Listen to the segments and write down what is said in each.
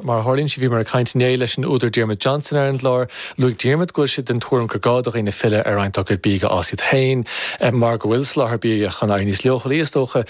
Mar a tharlaíonn sé, bhíomar ag caint inné leis an údar Diarmuid Johnson ar an gclár. Luaigh Diarmuid go bhfuil sé den tuairim gur gá do dhaoine filleadh ar roinnt dá gcuid bídh a fhás iad féin mar go bhfuil soláthar bia chun éirí níos leochailí, is dócha.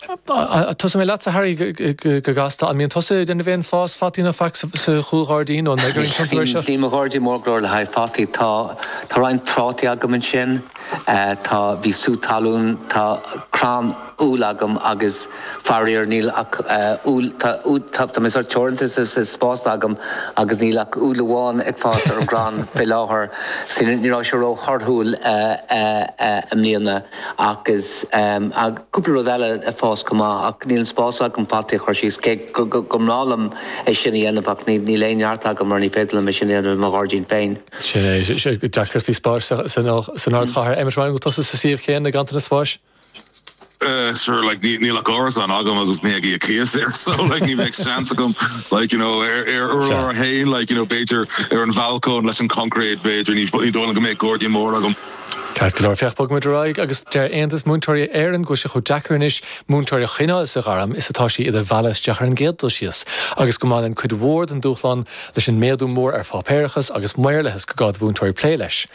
Tosóidh mé leatsa, Harry, go gasta. An mbíonn tusa in ann a bheith ag fás fataí nó faic sa chúlghairdín nó an mbeidh orainn tiontú air seo? Dá mbeadh mo ghairdín mór go leor le haghaidh fataí. Tá roinnt trátaí agam ansin. Tá, bhí sú talún, tá crann. úll agam agus faraor níl ach úll, tá, tá mé sórt teoranta sa, sa spás agam agus níl ach úll amháin ag fás ar an gcrann fé láthair so ní raibh sé ró thorthúil i mbliana ach is tá cúpla rud eile ag fás go maith ach níl an spás agam fataí a chur síos cé go, go, go mb'áil liom é sin a dhéanamh ach ní, níl aon neart agam mar ní féidir liom é sin a dhéanamh i mo ghairdín féin. Sin é, sin deacrachtaí spáis san, san ardchathair. Emmet Ryan, an bhfuil tusa sa suíomh chéanna, ganntanas spáis? sure like ní níl ach árasán agam agus ní ag í a cíos air so like ní bheadh seans agam like you know ar ar an urlár fhéin like you know b'fhéidir ar an bhalcóin leis an choncréit b'fhéidir ní ní dóigh liom go mbeadh gairdín mór agam. Ceart go leor féach bogfaidh muid ar aghaidh agus deir Aontas Múinteoirí Éireann go bhfuil sé chomh deacair anois múinteoirí a choinneáil sa ghairm is atá sí iad a mhealladh isteach ar an gcéad dul síos agus go mbaineann cuid mhór den dúshlán leis an méadú mór ar pháipéarachas agus maorlathas gur gá do mhúinteoirí plé leis.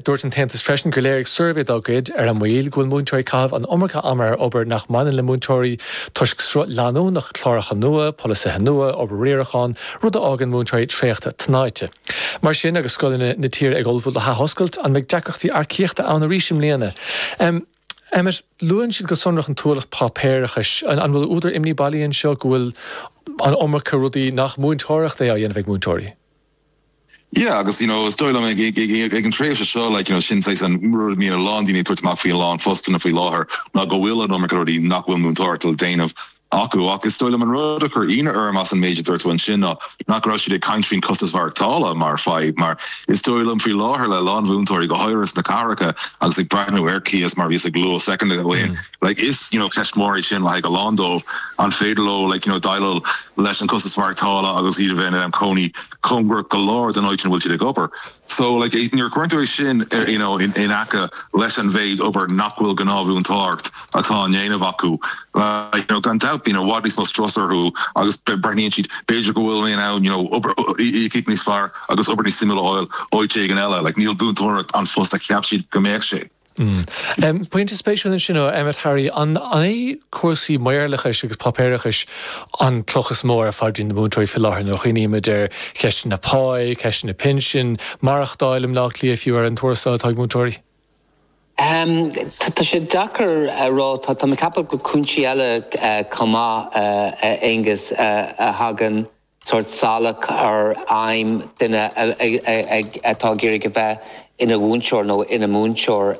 Dúirt an tAontas freisin gur léirigh suirbhé dá gcuid ar na mallaibh go bhfuil múinteoirí ag caitheamh an iomarca ama ar obair nach mbaineann le múinteoireacht toisc sruth leanúnach cláracha nua, polasaithe nua, obair riaracháin, rud a fhágann múinteoirí traochta tnáite. Mar sin, agus scoileanna na tíre ag ullmhú le hathoscailt, an mbeidh deacrachtaí earcaíochta ann arís i mbliana? Emmet, luann siad go sonrach an t-ualach páipéarachais. An bhfuil údar imní bailí anseo go bhfuil an iomarca rudaí nach múinteoireacht é á dhéanamh ag múinteoirí? Yeah agus you know is dóigh liom ag ag ag ag ag an tréimhse seo like you know sin saghas an rud a mbíonn a lán daoine ag tabhairt amach faoi i lán fostanna faoi láthair ná go bhfuil an iomarca rudaí nach bhfuil múinteoireacht le déanamh acu. Ach is dóigh liom an rud a chuir ionadh orm as an méid a dúirt tú ansin ná nach raibh siad ag caint faoin chostas mhaireachtála mar fadhb mar is dóigh liom faoi láthair le a lán mhúinteoirí go háirithe sna cathracha agus ag breathnú ar cíos mar bhíos ag lua second ago an luach cíos you know ceist mór é sin le haghaidh a lán dóibh an féidir leo like you know déileáil leis an costas mhaireachtála agus iad a bheith in ann cónaí cóngarach go leor don áit ina bhfuil siad ag obair so like nuair a chuireann tú é sin ar you know in aice leis an mhéid obair nach bhfuil gnáthmhúinteoireacht atá á ndéanamh acu like you know gan dabht bíonn i bhfad níos mó strus orthu agus breathnaíonn siad b'fhéidir go bhfuil aon ann you know obair íocaíocht níos fearr agus obair níos suimiúla a fháil áit éigin eile like níl múinteoireacht an phost a cheap siad go mbeadh sé. Pointe spéisiúil ansin ó Emmet. Harry, an iad na cúrsaí maorlathais agus páipéarachais an cloch is mó ar phaidrín na múinteoirí faoi láthair nuair a chuimhnímid ar cheisteanna páí, ceisteanna pinsin, maireachtáil i mBleá Cliath fiú, ar an tuarastal atá ag múinteoirí? Tá sé deacair a rá. Tá mé ag ceapadh go bhfuil cúinsí eile chomh maith, a Aonghus, a thagann. sórt salach ar aidhm duine atá ag iarraidh a bheith ina mhúinteoir nó ina múinteoir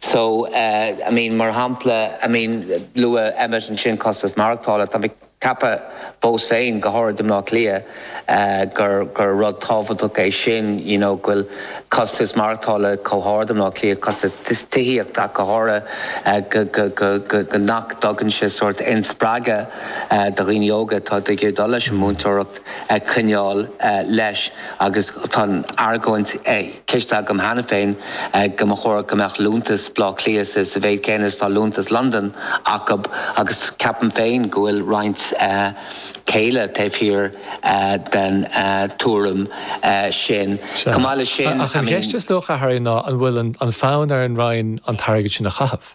so I mean mar shampla I mean luaigh Emmet ansin costas maireachtála tá mé ag ceapadh fiús féin go háirid i mBleá Cliath gur gur rud tábhachtach é sin you know go bhfuil costas maireachtála chomh hard i mBleá Cliath costas tithíochta ach go háirithe go go go go nach dtagann sé sórt inspreagadh do dhaoine óga atá ag iarraidh dul leis an múinteoireacht a choinneáil leis agus tá an argóint cloiste agam cheana féin go mba chórach go mbeadh liúntas B'lá Cliath sa mbealach céanna is atá liúntas Londain acub agus ceapaim féin go bhfuil roinnt céille taobh thiar den tuairim sin. Chomh maith leis sin, I mean. Ach an cheist is dócha, Harry, ná an bhfuil an fonn ar an Roinn an t-airgead sin a chaitheamh?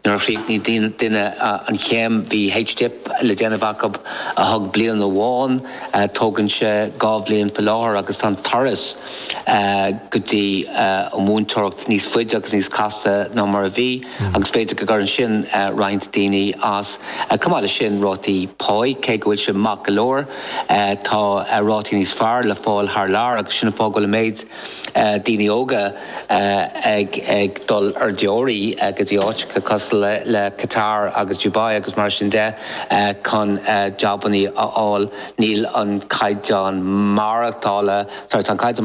Nuair a chríochnaíodh duine an chéim bhí HDip le déanamh acub a thóg bliain amháin, tógann sé dhá bhliain faoi láthair agus tá an turas go dtí an mhúinteoireacht níos faide agus níos casta ná mar a bhí agus b'fhéidir go gcuireann sin roinnt daoine as. Chomh maith leis sin rátaí páighe, cé go bhfuil sé maith go leor tá rátaí níos fearr le fáil thar lear agus sin an fáth go bhfuil an méid daoine óga ag dul ar deoraíocht go dtí áiteacha cosúil le Qatar agus Dubai agus mar sin de chun jabannaí a fháil. Níl an caighdeán maireachtála, sorry, tá an caighdeán